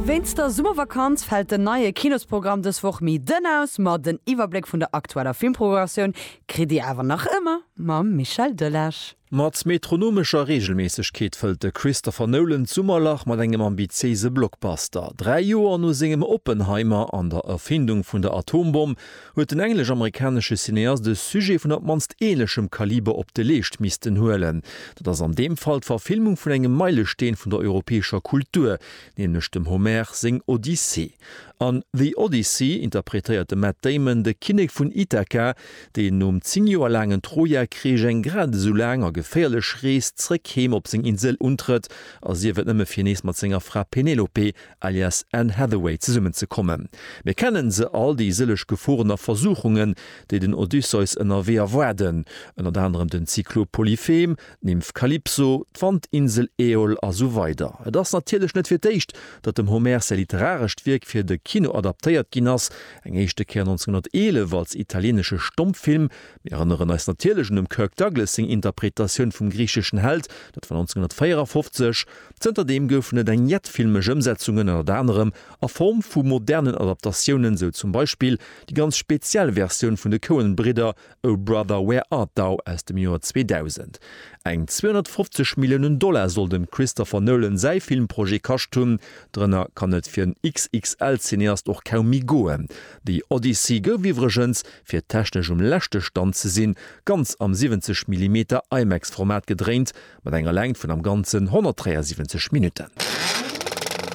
Wéinst der Summervakanz fält den neie Kinosprogramm dës Woch méi dënn aus, ma den Iwwerbléck vun der aktueller Filmprogrammatioun kritt Dir awer nach ëmmer mam Michel Delage. Mat metronomescher Reegelméissegkeet fëllt de Christopher Nolan d'Summerlach mat engem ambitiéise Blockbuster. Dräi Joer no sengem Oppenheimer an der Erfindung vun der Atombomm huet den englesch-amerikanesche Cineast e Sujet vun op d'mannst ähnlechem Kaliber op de Leescht missten huelen. Dat ass an deem Fall d'Verfilmung vun engem Meilesteen vun der europäescher Kultur, nämlech dem Homer seng Odyssee. An The Odyssey interpretéiert de Matt Damon de Kinnek vun Ithaka, deen nom zéng Joer laangen Troja-Krich eng grad esou laang a geféierlech Rees zréck heem op seng Insel untrëtt, a sief et nëmme fir nees mat senger Fra Penelope alias Anne Hathaway, zesummen ze kommen. Mir kennen se all, déi sëlleg Geforen a Versuchungen, déi den Odysseus ënnerwee erwaarden, ënnert anerem den Zyklop Polyphem, d'Nymph Kalypso, d'Wandinsel Äol a sou weider. Et ass natierlech net fir d'éischt, datt dem Homer säi literarescht Wierk fir de Kino adaptéiert ginn ass, eng éischte Kéier 1911 als italieenesche Stommfilm. Mir erënneren eis natierlech un dem Kirk Douglas seng Interpretatioun vum griicheschen Held, dat war 1954. Zënter deem goufen et eng jett filmesch Ëmsetzungen, ënnert anerem a Form vu modernen Adaptatiounen, sou zum Beispill déi ganz speziell Versioun vun de Coen-Bridder Oh Brother Where Art Thou aus dem Joer 2000. Eng 250 Milliounen Dollar soll dem Christopher Nolan säi Filmprojet kascht hunn. Drënner kann et fir en XXL-Cineast och kaum méi goen. The Odyssey gouf iwwregens, fir technesch um leschte Stand ze sinn, ganz am 70 Millimeter IMAX-Format gedréint, mat enger Längt vun am Ganzen 173 Minutten.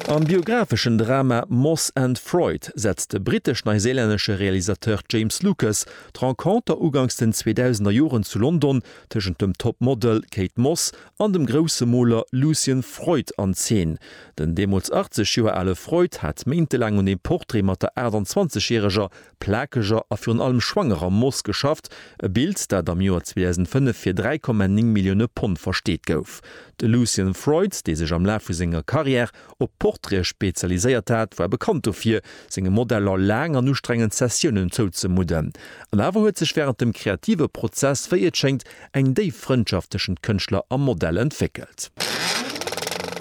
Am biographeschen Drama Moss and Freud setzt de brittesch-neiséilännesche Realisateur James Lucas d'Renconter uganks den 2000er Joren zu London tëschent dem Top-Model Kate Moss an dem grousse Moler Lucian Freud an Zeen. Den deemools 80 Joer ale Freud hat méintelaang un dem Portrait mat der 28 Järeger plakeger a virun allem schwangerer Moss geschafft, e Bild, dat am Joer 2005 fir 3,9 Millioune Pond versteet gouf. De Lucian Freud, dee sech am Laf vu senger Karriär op Portraite spezialiséiert hat, war bekannt dofir, senge Modeller laang an ustrengend Sessiounen zouzemudden. An awer huet sech wärend dem kreative Prozess, wéi et schéngt, eng déif Frëndschaft tëschent Kënschtler a Modell entwéckelt.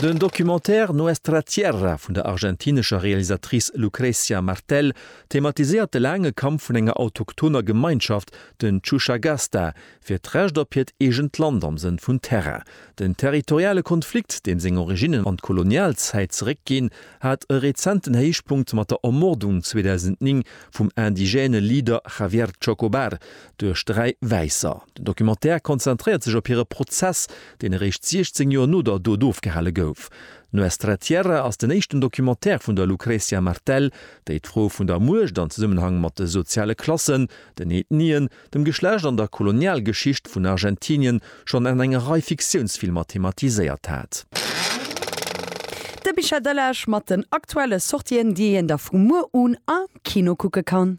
Den Documentaire Nuestra Tierra vun der argentinescher Realisatrice Lucrecia Martel Thematiséiert de laange Kampf vun enger autochthoner Gemeinschaft, den Chushagasta, fir d'Recht op hiert eegent Land am Sënn vun Terrain. Den territoriale Konflikt, deem seng Originnen an d'Kolonialzäit zeréckginn, hat e rezenten Héichpunkt mat der Ermordung 2009 vum indigène Leader Javier Chocobar duerch dräi Wäisser. Den Documentaire konzentréiert sech op hire Prozess, deen eréischt 16 Joer no der Dot ofgehale gouf. Nuestra Tierra ass den éischten Documentaire vun der Lucrecia Martel, déi d'Fro vun der Muecht an Zesummenhang mat de soziale Klassen, den Ethnien, dem Geschlecht an der Kolonialgeschicht vun Argentinien schonn an enger Rei Fiktiounsfilmer thematiséiert hat. De Bicher Delage mat den aktuelle Sortien, déi een da vu muer un am Kino kucke kann.